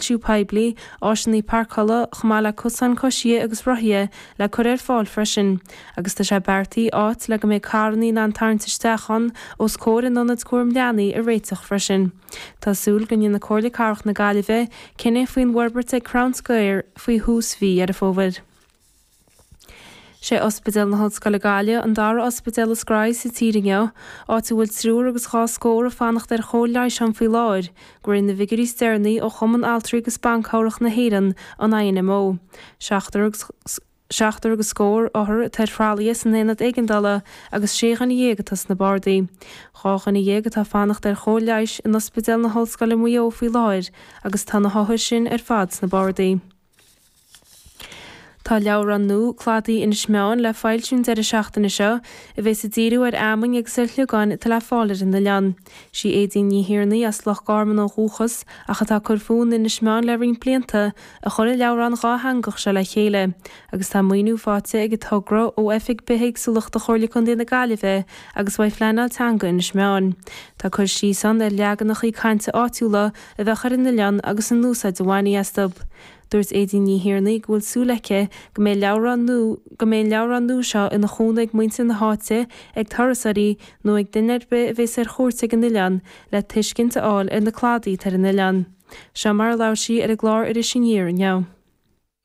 siú poiblí, áiseanna parcála, chomh maith le cosáin coisithe agus rothaithe le cur ar fáil freisin, agus tá sé beartaithe áit le go mbeidh carranna in ann tarraingt isteach ann os comhair an Ionaid Cúraim Leanaí a réiteach freisin. Tá súil go ndéanfaidh Comhairle Cathrach na Gaillimhe cinneadh faoin bhforbairt ag Crown Square faoi thús mhí Dheireadh Fómhair. Sé Ospidéal na hOllscoile Gaillimh an dara ospidéal is gnóthaí sa tír inniu, áit a bhfuil triúr agus dhá scór ag fanacht ar chóir leighis ann faoi láthair, de réir na bhfigiúirí is deireanaí ó Chumann Altraí agus Ban Cabhrach na hÉireann, an INMO. Seachtar agus. Seachtar agus scór othar atá ar thralaithe san Aonad Éigeandála agus sé dhuine dhéag atá sna bardaí. Dhá dhuine dhéag atá ag fanacht ar chóir leighis in Ospidéal na hOllscoile Mhaigh Eo faoi láthair agus tá na hothair sin ar fad sna bardaí. Tá leabhrán nua, Cladaí Inis Meáin, le foilsiú an deireadh seachtaine seo a bheas ag díriú ar fheamainn agus ar shliogáin atá le fáil ar an oileán. Sí Aedín Ní Thiarnaigh, as Loch Garman ó dhúchas ach atá ag cur fúithi in Inis Meáin le roinnt blianta, a chuir an leabhrán dhátheangach seo le chéile agus tá maoiniú faighte ag an togra ó Oifig Bithéagsúlachta Chomhairle Contae na Gaillimhe agus uaidh Phleanáil Teanga Inis Meáin. Tá cur síos ann ar leaganachaí cainte áitiúla, a bheadh acu ar an oileán agus an úsáid a bhainfí astu. Dúirt Aedín Ní Thiarnaigh go bhfuil súil aici go mbeidh leabhrán go mbeidh an leabhrán nua seo ina chúnamh ag muintir na háite, ag turasóirí nó ag duine ar bith a bheas ar chuairt ag an oileán le tuiscint a fháil ar na cladaí atá ar an oileán. Seo mar a labhair sí ar an gclár Iris Aniar inniu.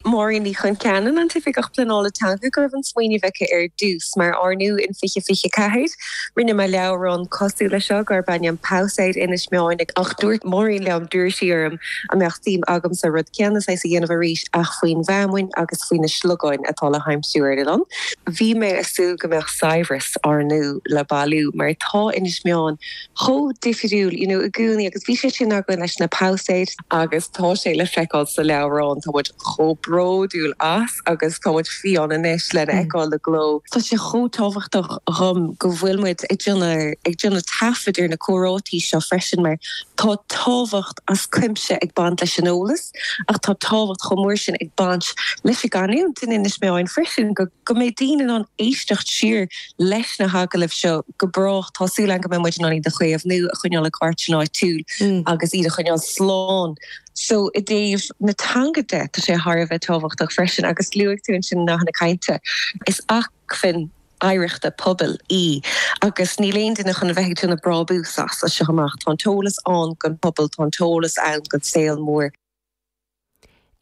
Máirín Ní Choncheanainn, an tOifigeach Pleanála Teanga, go raibh an smaoineamh aici ar dtús, mar ar ndóigh in fiche fiche a ceathair. Rinne mé leabhrán cosúil leis seo darb ainm Pabhsaeid Inis Meáin ach dúirt Máirín liom, d'iarr sí orm an mbeadh suim agamsa rud céanna saghas a dhéanamh arís ach faoin bhfeamainn agus faoi na sliogáin atá le haimsiú ar an oileán. Bhí mé ag súil go mbeadh saibhreas ar ndóigh le bailiú mar tá Inis Meáin chomh difriúil, you know, i gcónaí agus bhí sé sin againn leis na pabhsaeid. Agus tá sé le feiceáil sa leabhrán, tá muid chomh bródúil as agus tá muid fiáin anois lena fheiceáil i gcló. Tá sé chomh tábhachtach dhom go bhfuil muid ag déanamh, ag déanamh taifead ar na comhráití seo freisin mar tá tábhacht as cuimse ag baint leis an eolas ach tá tábhacht chomh mór sin ag baint leis an gcanúint in Inis Meáin freisin go go mbeidh daoine in ann éisteacht siar leis na hagallaimh seo go brách. Tá súil agam go mbeidh muid in ann iad a chaomhnú, a choinneáil i gcartlann áitiúil agus iad a choinneáil slán. So, i dtaobh na teanga de, tá sé thar a bheith tábhachtach freisin, agus luaigh tú ansin nathanna cainte, is acmhainn oidhreachta pobail í agus níl aon duine chun a bheith ag déanamh brábús as, as seo amach. Tá an t-eolas ann don phobal, tá an t-eolas ann don saol mór.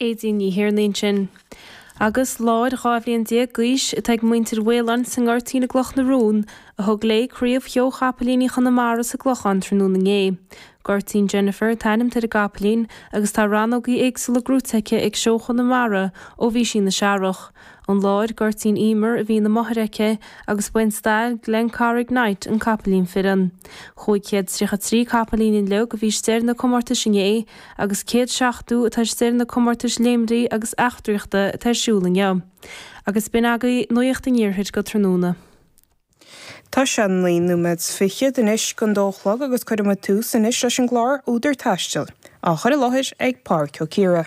Aedín Ní Thiarnaigh ansin. Agus láir dhá bhliain déag d'aois atá ag muintir Mhaoláin sa nGoirtín i gCloch na Rón, a thug léi craobh sheó Chapaillíní Chonamara sa gClochán tráthnóna inné. Goirtín Jennifer atá ainmnithe ar an gcapaillín agus tá rannógaí éagsúla gnóite aici ag seó Chonamara ó bhí sí ina searrach. An láir, Goirtín Emer, a bhí ina máthair aici agus ba é an stail, Glencarrig Knight, an capaillín fireann. Cúig chéad tríocha trí capaillín uilig, a bhí istigh ar na comórtais inné, agus céad seachtó atá istigh ar na comórtais léimní agus marcaíochta atá ar siúl inniu. Agus b'in agaibh Nuacht an Iarthair go tráthnóna. Tá sé naoi nóiméad 's fichead anois chun a dó a chlog agus cuirfidh muid tús anois leis an gclár Údar Taistil, á chur i láthair ag Pádhraic Ó Ciardha.